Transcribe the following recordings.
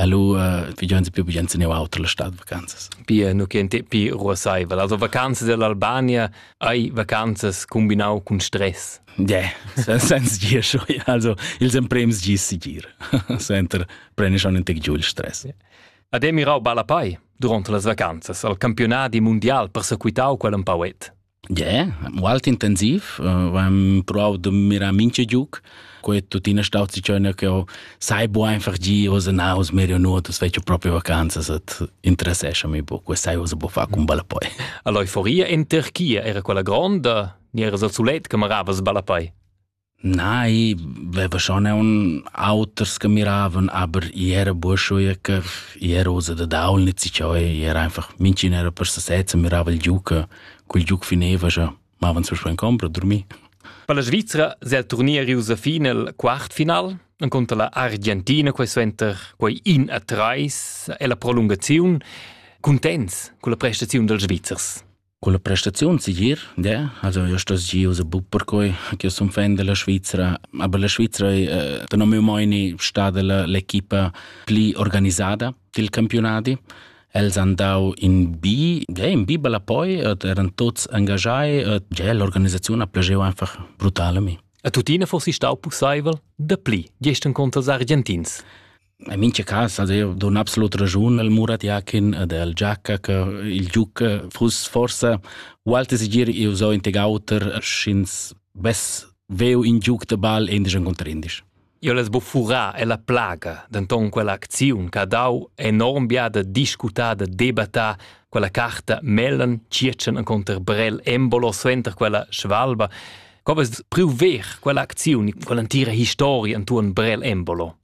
Allora uh, vi già più bien se ne autre la stad vacanzas. Pia nu che te pi ruosaival. Also vacanzas dell'Albania hai vacanzas combinau cun stress. Yeah, senza dir schon. Also ils emprems gis si gir. Senter preni schon un tec giù il stress. Yeah. Ad è mirau balla pai durante las vacanzas al campionat mundial persequitau quel empauet. Yeah, molt intensiv. Äh, am prov de mirar minche giuc. Quei tuttina stau zicona che ho sai bu einfach gi osa naus medio nuotus fece proprio vacanzas et interessescha mi bu. Quei sai osa bu fa cum balla poi. All'euforia in Turchia era quella gronda, ni era sul sulet che maravas balla poi. Nei, veva schon aun auters che miravan, aber i era burscho ja che i era usa da daul nit si ciò, i era einfach minchin era per se sezza, mirava il giuca, col giuc fineva ja, mavan sul span compra, dormir. Per la Svizra se il turnier riusa fin al quartfinal, incontra la Argentina, quei suenter quei in a treis e la prolungaziun, contents con la prestaziun dels Svizzers. Culla prestaziun segir, de, also io stos giu se buc perquei ch'io sun fan della Svizra, aber la Svizra è, tenor miu meini, stada la l'equipa pli organisada dil campionadi. Els han dau in bi, ja, in bi bella poi, et eran tots engagiai, et ja, l'organisaziun ha plageu einfach brutal a mi. E tuttina forsi stau pusseivel, da pli, gestern contro els argentins? In mincha cas ad eu don absolut raschun al Murat Jakin ed al Giacca che il giuca fuss forsa ualti segir eu so in teg auter sch'ins vess veu in giuc da ball endisch conter endisch. Io l'es bu furà e la plaga, denton quella acziun che ha dau enorm biada discutar da debattar quella carta Mellen, Circen e conter Brell Embolo suenter quella Schwalba. Co vest priu ver quella acziun, quella entira historia intuorn Brell Embolo?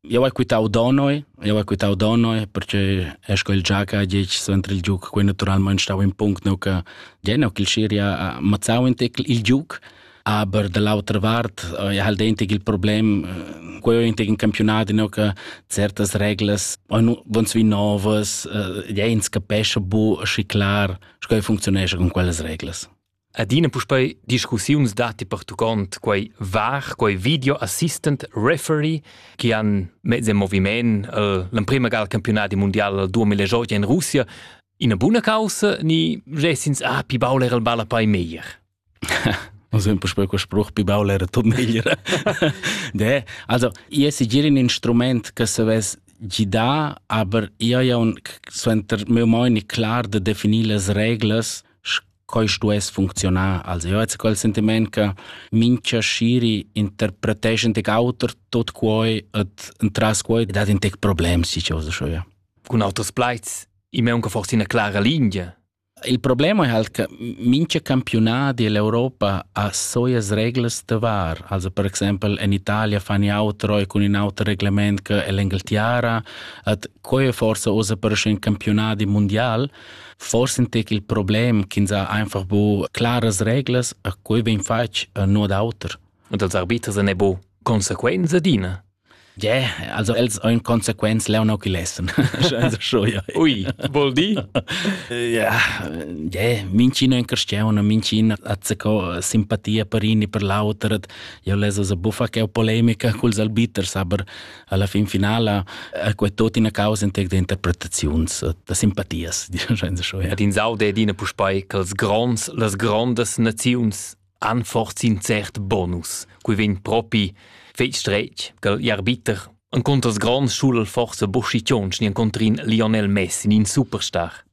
Eu hai quitau Donoi, eu hai quitau Donoi perche è sco il Giaca ha ditg suenter il giuc, quei naturalmein stau in punct, neu che ja, neu ch'il Siria ha mazzau in tec il giuc, aber dall'autra vart eh, ha halt eintig il problem, eh, quei ho eintig in campionat, neu che certas reglas van sui novas, ja, ins capescha bu schi clar, sco ei functionescha con quellas reglas. Adina puspei discussiuns datti pertuccont quei var, quei video assistant referee che han mezz en moviment uh, l'emprema ga al campionati mondial 2018 in Russia. Ina buna causa ni gessins ah pi baul era il balla pai meglier? Also un po' quel spruch pi baul era tot meglier. De, also io se giri un instrument che se ves gida, aber io ja un suenter mio moini clar de definir las reglas Quai stuess funcziunar als euts quel sentiment che mincha sciri interpreteschan tec auter tot quoi et entras quoi dat in tec problems si chose scho ja. Cun auters plaids, i m'è unca forse ina clara linea. Il problema è halt che mincha campionati dell'Europa ha soias reglas da var. Also per exempel in Italia fan i outro e con in auter reglement che l'Engeltiara, et quei forse osa per un campionati mondial, Forse entec il problem ch'ins ha einfach bu claras reglas, a quei vegn fatg e no d'auter. Und als arbiters ne bo consequenze adina. Yeah, also els ein consequenz leono qui lessen. also schon ja. Ui, vol di? ja, yeah, mincin ein cristiano, mincin azzeco simpatia per in e per l'auter. Io leso se buffa che è polemica culs arbiters, aber alla fin finala è quei tot ina causa entec de interpretaziuns da simpatias ed in saude ed ina puspei che els gronds las grondas naziuns anforzin cert bonus cui vegn propi feit strech che arbiter an conters grands schul forse buschi tionch ni an contrin Lionel Messi in superstar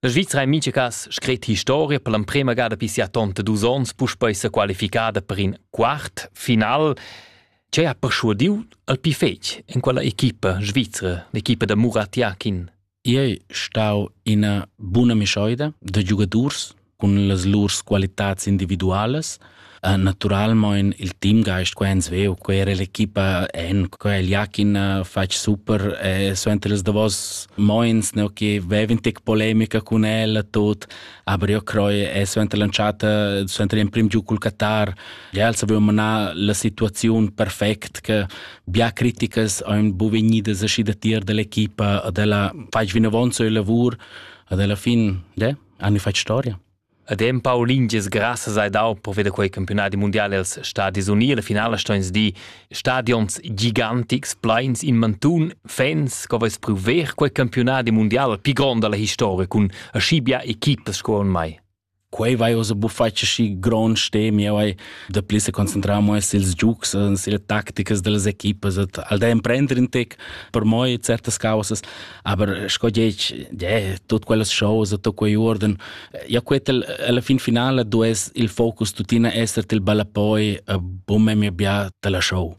La Svizra è mincha cas scret historia per l'emprema gada pi sia tonta dus ons puspei sa qualificada per in quart final. Ce ha perschuadiu al pi fetg en quella equipa svizra, l'equipa da Murat Yakin? Ei stau ina buna mischoida da giugadurs cun las lur qualitads individualas Uh, naturalmein il teamgeist che ins veu quera l'equipa en quel Jakin uh, fetg super e so entre les davos moins ne che veven tec polemica con el tot aber io croi e so entre l'entschatta so entre in prim giu col Qatar ja els avevo manar la situazione perfect che bia criticas ein bu vegnidas aschi da tier dell'equipa e della fetg vinavon so il lavor ad alla fin de hanno fatto storia Ed empau lingias grassas hai dau per veder quei campiunadi mundial els Stadis Uni. La finala sto ins dir stadions gigantics, pleins in mantun, fans che veis priu ver quei campiunadi mundial più grond dalla historia cun aschi bia equipas sco en mai. Quei vai osa bufatg aschi grond stemi, eu hai da pli se concentrar mo sils giugs, sille tacticas dellas equipas, et al da emprender in tec per moi certas causas. Aber sco dieci, yeah, tut quellas choses, tot quei uorden, ja quetel alla fin finale du es il focus tutina esser til ballapoi a bumme mi bia tela show.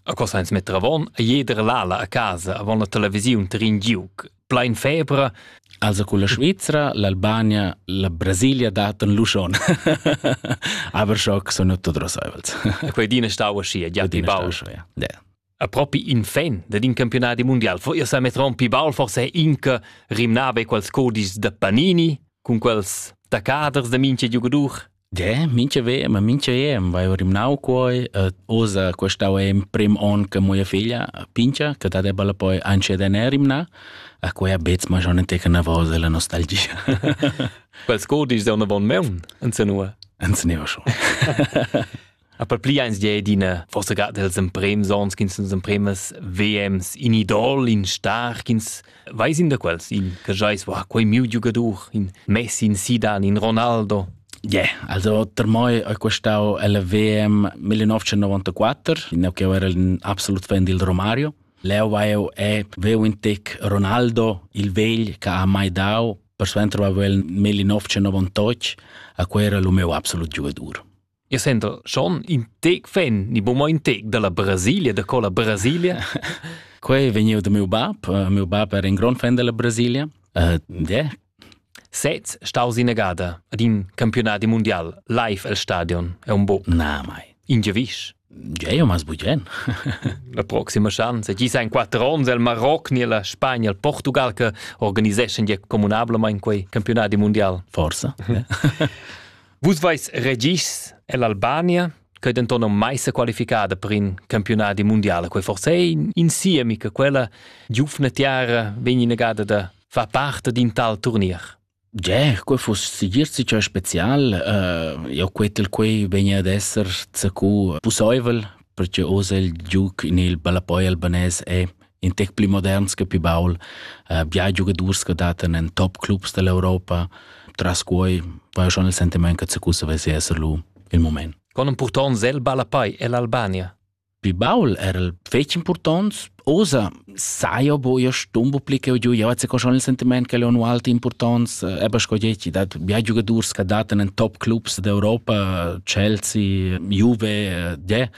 A cosa ins metter avon, a jeder lala a casa avon la televisiun trin giuc. Plein febra. Also con la Svizzera, l'Albania, la Brasilia daten Luschon. Aber schock sono tot rosaivels. E quei dina stau ascia, ja ti bau. Ja. A propi in fan dad in campiunadi mundial fo ir sa metron pi baul forse inca rimnava quels codis da Panini cun quels taccaders da mincha giugadur. De, mincha VM, mincha EM vai rimnau quoi, uh, usa questau em prim on che mia figlia pincha, che da deballa poi anche da ne rimna, a quei a bets ma schon teca na vosa la nostalgia. quels codis da una von meun, anze nua? Anze neva schon. A per pli eins di d'ina forsa ga dels emprems ons ch'ins nos empremas VMs in idol, in star, ch'ins veis in da quels, in che jais, wow, quei miu giugadur, in Messi, in Zidane, in Ronaldo. Yeah, also per me è questo il VM 1994, in che era un absolut fan del Romario. Leo eu e veu in tec Ronaldo, il vegl che ha mai dau, per suenter va il 1998, a quel era il meu absolut giugadur. Eu senta schon in tec fan, ni boma in tec dalla Brasilia, da colla Brasilia. Quei vegniu da miu bab. Uh, miu bab era in grand fan della Brasilia. Uh, de. Sez staus innegada ad in campionati mondial live el stadion, è un bo. Na mai. In gevisch. Gei mas bugen. la proxima chance. Gi sa in quattro ons el Maroc ni la Spagna, il Portugal che organiseschan ja communablamain quei campionati mondial. Forsa. Vus veis regis ell'Albania, che denton non mai se qualificada per in campionati mondiale, quei forse è in siemi che quella giufna tiara vegni negata da fa parte d'in tal turnier. Gier, quei fuss sigir sicher spezial, uh, io quetel quei vegni ad esser zacu pusoivel, perché osa il giuc in il ballapoi albanese è in tec pli moderns che pli baul, uh, bia giugadurs che datan en top clubs dell'Europa. Tras quei va schon il sentiment che Zacusa vesse essere lu il moment. Con un purton zel balapai ell'Albania. Pi baul era el fetg importants, osa saio boia stumbo pli che giu, jau se schon il sentiment che leon alti importants, eh, aber sco dieci, dat bia giugadurs che datan in top clubs d'Europa, Chelsea, Juve, eh, yeah,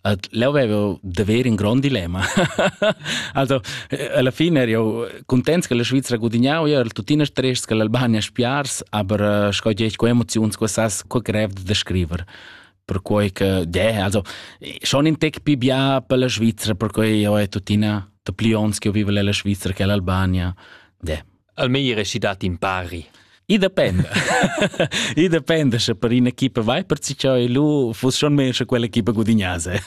Ed leu avevo da ver in grond dilemma. also, eh, alla fine ero contents che la Svizzera gudignau, ero tuttina stress che l'Albania spiars, aber eh, sco dieci co emoziuns co sas co grev da scriver per quei che yeah, also schon in tec più bia per la Svizzera per quei io è tuttina da plions che vive la Svizzera che l'Albania yeah. al meglier es i dat impari. I dependa. I dependa sche per in'equipa vai per cicciò e lu fuss schon meglio sche quell'equipa gudignasse.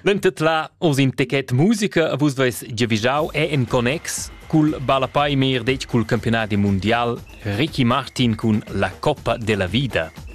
Dentet la oz in techet musica a vus vais giavischau è en connex cul ballapei mer detg cul campionat mundial Ricky Martin cun la Coppa della Vida.